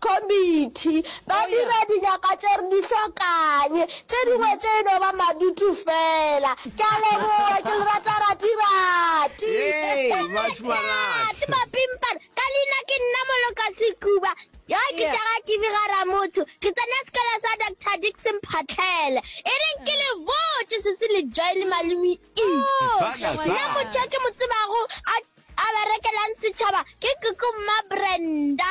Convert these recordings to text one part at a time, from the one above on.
Committee, ba dira dinyaka tše re di hlokanye, tše dingwe tše e no ba madutu fela. Ke a leboga, ke le rata rati-rati. Hei, bašumarati. Bapimpana, ka leina ke nna Moloka Sekuba. Yo ke tša ga Kibi ga Ramotho, ke tsena sekolo sa Doctor Dickson Phatlhele. E reng ke le botše se se le join Malumi E. Nna motho yo ke mo tsebago a a berekelang setšhaba ke Koko Mma Brenda.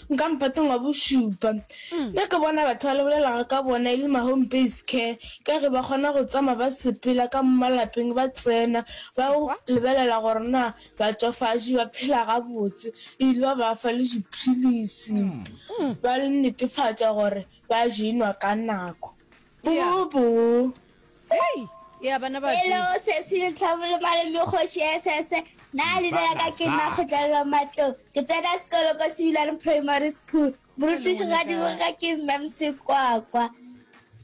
Nka mpatong wa bošupa. Mme ke bona batho ba lebelelago ka bona e le ma-home based care ka ge ba kgona go tsamaya ba sepela ka mo malapeng ba tsena ba yo lebelela gore na batswafatši ba phela gabotse ebile ba ba fa le diphilisi ba netefatša gore ba je enwa ka nako. Boo boo. Hei! Ea bana ba teng. Hello, sesi le tlhabolo malome kgoši SS. Na le dira ka ke nna kgotlelelo matlong. Ke tsena sekolo ko Sebilane Primary School. Morutiši ga di boga ke mme Msekwakwa.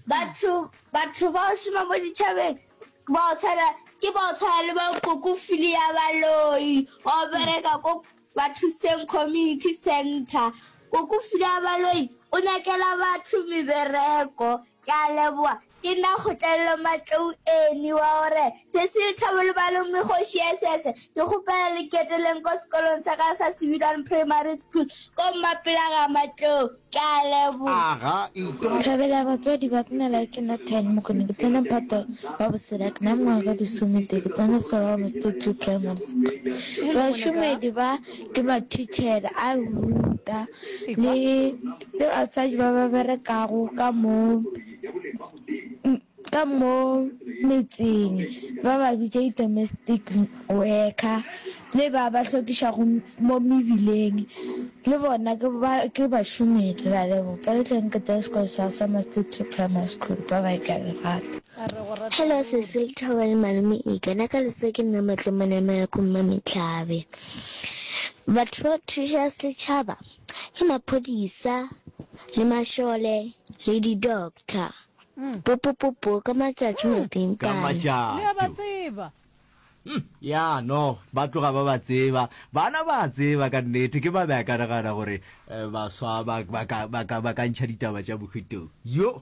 Batho batho ba o šoma mo ditšhabeng ba o tshwana ke ba o tshwana le ba koko fili ya baloi o bereka ko bathuseng community center koko fili ya baloi o nyakela batho mebereko Ke a leboga. Ke na kgotlelelo matlou eni wa gore Cecil Thabo Lebalo mme kgoši ya Sese. Ke kgopela le keteleng ko sekolong sa ka sa Sebilwane Primary School ko Mmapela ga matlou. Ke a leboga. Thabela batswadi ba kna like ke na ten mokone ke tsena mphato wa bosela ke na mengwaga ka disome te ke tsena sekolo wa mosete two primary school bašomedi ba ke mathichela a ruta le Le basadi ba ba berekago ka mo, ka mo metseng, ba ba bitša di-domestic worker, le ba ba hlwekišago mo mebileng, le bona ke ba, ke bašomedi. Re a leboga. Ke re tleng ke tsebe sekolo sa Summer City Primary School. Bye bye, ke a le rata. Hello sesi lethabo le malome ika na ka lesa ke nna matlong manamela ko mmametlhabe batho ba thuša setšhaba Ke maphodisa le mašole le di-doctor. Popopopo ka matšatšu mapimpane. Ka matšatšu. Le a ba tseba. Hm, ya no, ba tloga ba ba tseba. Bana ba a tseba ka nnete, ke ba be a ka nagana gore eh, baswa ba, ba, ka, ba, ka, ba ka ntšha ditaba tša bohwitong. Yo!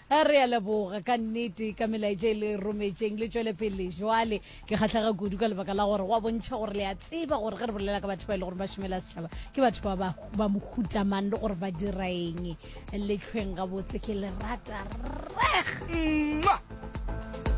A re a leboga ka nnete ka melaetša e le rometšeng. Le tšwele pele bjale. Ke kgahlega kudu ka lebaka la gore wa bontšha gore le a tseba gore ge re bolela ka batho ba e le gore ba šomela setšhaba ke batho ba ba, ba mohuta mang le gore ba dira eng. Le hlweng gabotse. Ke le rata reg. Mwah!